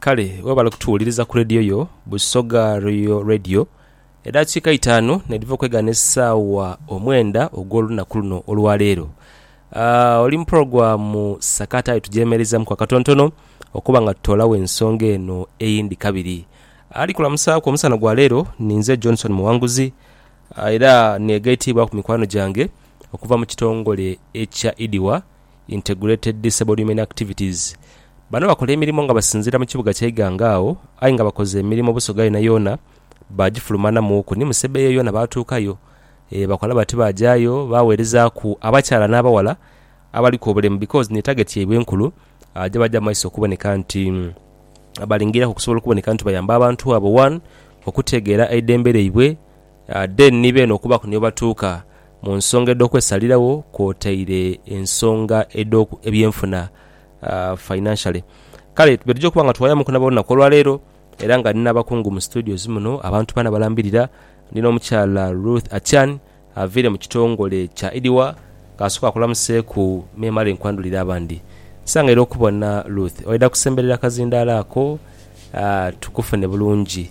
Kale webale kutuwuliriza ku leediyo yo Busoga Royal Radio. Edaakiika eitaanu n'edhiva okwegaana esaawa omwenda ogw'olunaku luno olwa leero. Aah, oli mu pulogulaamu Sakata aye tugyemereizaamuku akatontono okuba nga tutoolagho ensonga eno eyindi kabiri. Ali kulamusaaku omusana gwa leero ni nze Johnson Muwanguzi era neegaitiibwaku mikwano gyange okuva mu kitongole ekya IDIWA. Integrated Subhuman Activities, bano bakola emirimo nga basinziira mu kibuga kya Iganga agho aye nga bakoze emirimo Busoga yoonayoona baagifulumaanamuuku ni Musebe eyo yoona baatuukayo. Eeh bakola bati baajayo baaweerezaaku abakyala n'abawala abaliku obulemu because ni target yaibwe enkulu gye baja mu maiso okuboneka nti balingiriraku okusobola okuboneka nti bayamba abantu abo one okutegeera eidembe lyaibwe, Then ni beene okubaaku ni webatuuka mu nsonga edh'okwesalirawo kwotaire ensonga edh'ebyenfuna, financially. Kale tube tuja okuba nga twayamuku nabo olunaku olwaleero era nga ndi n'abakungu mu studios muno, abantu bana balambirira. Ndi n'omukyala Ruth Achan avaire mu kitongole kya IDWA. Kansooke akulamuseeku memale nkwandhulire abandi. Nsangaire okubona Ruth, waidha kusemberera akazindaalo ako tukufune bulungi.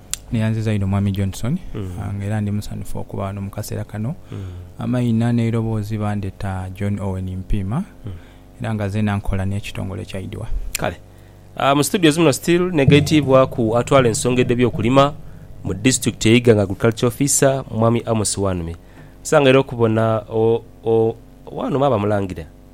Neyanziza inho Mwami Johnson nga era ndi musanhufu okuba ghano mu kaseera kano. Amaina n'eiroboozi bandheta John Owen Mpiima era nga zeena nkola n'ekitongole kya IDWA. Kale. Mu situdios muno still negaitiibwaku atwala ensonga edh'ebyokulima mu disitulikiti e Iganga, Agriculture Officer, Mwami Amos Wanhume. Nsangaireho okubona Wanhume aba Mulangira.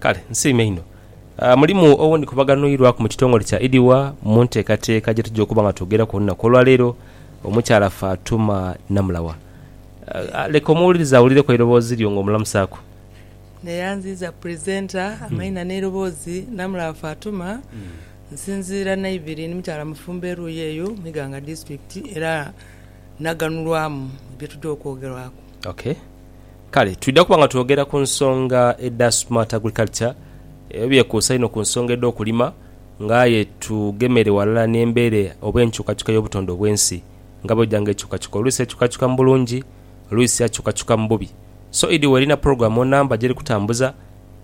Kale nsiime inho. Mulimu owundikubaganhwirwaku mu kitongole kya Idiwa mu nteekateeka gye tugya okuba nga twogeraku olunaku olwa leero, omukyala Fatuma Namulawa. Leka omuwuliriza awulireku eiroboozi lyo ng'omulamusaaku. Neyanziiza pulizeenta amaina n'eiroboozi. Namulawa Fatuma, nsinziira Naibiri, ni mukyala mufumbo eruuyi eyo mu Iganga Disitulikiti era naganhulwamu ebye tugya okwogerwaku. Okay. Kale twidha kuba nga twogera ku nsonga edha Smart Agriculture, ebyo byekuusa inho ku nsonga edh'okulima nga aye tugemeire ghalala n'embeera oba enkyukakyuka y'obutonde obw'ensi nga bw'eja nga ekyukakyuka. Oluisi ekyukakyuka mu bulungi, oluisi akyukakyuka mu bubi. So Eddy Werina pulogulaamu onamba gy'eri kutambuza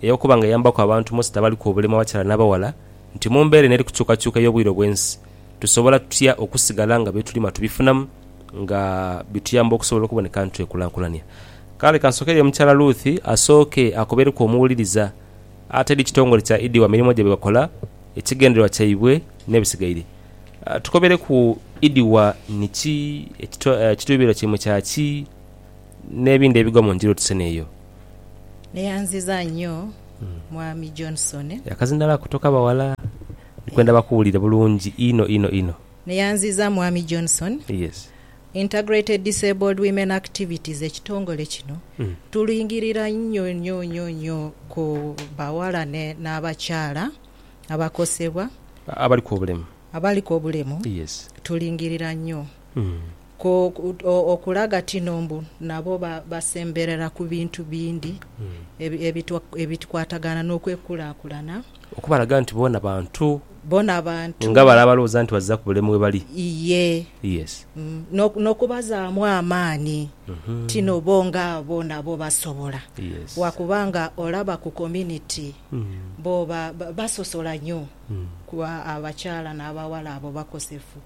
ey'okuba nga eyambaku abantu mostly abaliku obulema abakyala n'abaghala nti mu mbeera eno eri kukyukakyuka ey'obwire obw'ensi, tusobola tutya okusigala nga bye tulima tubifunamu nga bituyamba okusobola okuboneka nti twekulankulania? Kale ka nsookereyo omukyala Ruth asooke akobereku omuwuliriza atedi kitongole kya Idi wa mirimo gye bye bakola, ekigendererwa kyaibwe n'ebisigaire. Tukobereku Idi wa ni ki, ekiruubirirwa kyaimwe kya ki n'ebindi ebigwa mu njiri otusena eyo. Neyanziza nyo mwami Johnson. Yakazinala kutoka bawala. Nkwenda bakuwulire bulungi inho inho inho. Neyanziza Mwami Johnson. Yes. Integrated Disabled Women Activities ekitongole kino tulingirira inho inho inho inho ku bawala ne n'abakyala abakosebwa, Abaliku obulemu. abaliku obulemu, Yes. tulingirira inho ku okulaga tino mbu nabo ba basemberera ku bintu bindi ebi ebitukwatagana n'okwekulakulana. Okubalaga nti boona bantu. Boona bantu. Nga bale abalowooza nti bazira ku bulemu we bali. Iye. Yes. N'okubazaamu amaani. Tino bo nga bo nabo basobola. Yes. Wa kuba nga olaba ku community, bo basosola nyo ku abakyala n'abawala abo bakosefu.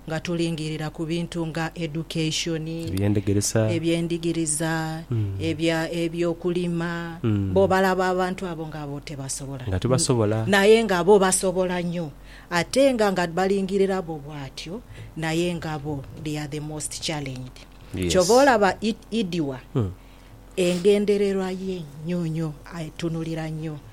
nga tulingirira ku bintu nga education, Ebyendegeresa. ebyendigiriza, Mm. ebya ebyokulima, Mm. bo balaba abantu abo nga bo tebasobola. Nga tibasobola. Naye nga bo basobola nyo. Ate nga nga balingirira bo bwatyo, naye nga bo they are the most challenged. Yes. Kyova olaba Id, Idiwa Mm. engendererwa ye nyo nyo atunulira nyo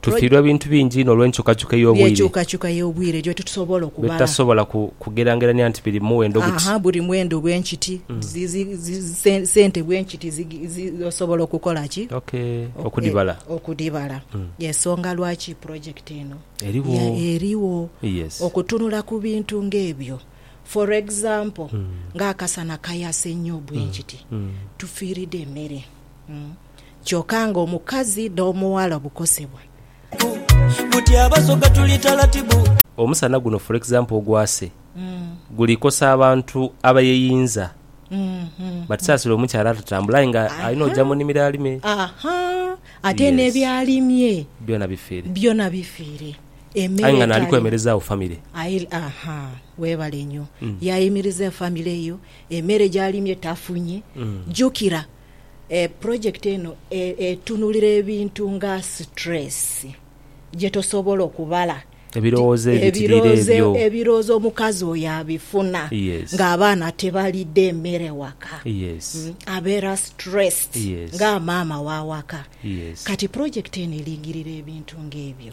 Tufiirwa ebintu bingi inho olw'enkyukakyuka ey'obwire. By'enkyukakyuka y'obwire ejo titusobola okubala. By'etutasobola kugerangerania nti biri muwendo guti. Haa, buli muwendo bwe nkiti, sente bwe nkiti osobola okukola ki? Okudhibala. Okudhibala. Y'ensonga lwaki pulojekiti eno. Erigho. Erigho. Okutunula ku bintu ng'ebyo. For example, ng'akasana kayase nnyo bwe nkiti, tufiiridwa emere. kyoka nga omukazi n'omughala obukosebwa. Buti abasoga tuli talatibu. Omusana guno for example ogwase guli kosa abantu abayeyinza but sasira omukyala atatambula aye nga alina oja munimiro alime ate nebyalimye byona bifere byona bifere aye nga nali kwemerezawo family webale nyo yayimiriza efamily yo emere jalimye tafunye jukira Pulojekiti eno etunulira ebintu nga situleesi gye tosobola okubala, ebirowoozo omukazi oyo abifuna ng'abaana tibalidde mmere waka, abeera situleesed nga maama wa waka. Kati pulojekiti eno eringirira ebintu ng'ebyo.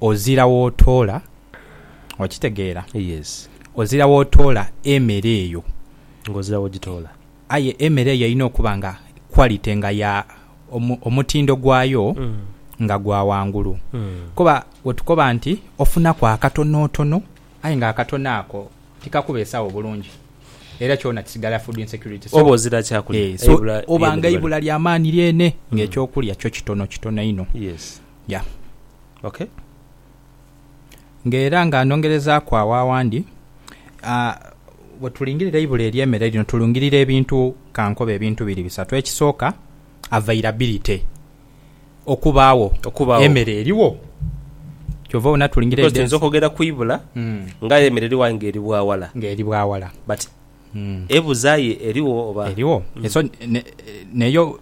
Ozira w'otoola, okitegeera? Yes. Ozira w'otoola emere eyo. Nga ozira w'ogitoola. Aye emere eyo erina okuba nga quality nga ya, omu, omutindo gwayo nga gwa ghangulu. Kuba wetukoba nti ofunaku akatonotono, aye nga akatono ako tikakubeesagho bulungi, era kyona kisigala food insecurity. So, Oba ozira kyakulya, eh, so, eibula oba nga ly'emere. eibula lya maani lyene, nga eky'okulya kyo kitonokitono inho. Yes. Ya. Ok. Nga era nga nongerezaaku agho awandi, aa, bwe tulingirira eibula ery'emere lino tulingirira ebintu, ka nkobe ebintu biri bisatu. Ekisooka, availability, okubaagho, Okubaagho. emere erigho. Kyova obona tulingirira Because tuyinza edensi okwogera ku ibula Mm. nga aye emere eriwo aye nga eri bwa wala. ng'eri bwa wala. But Mm. ebuza aye erigho oba? Erigho. So, ne- n'eyo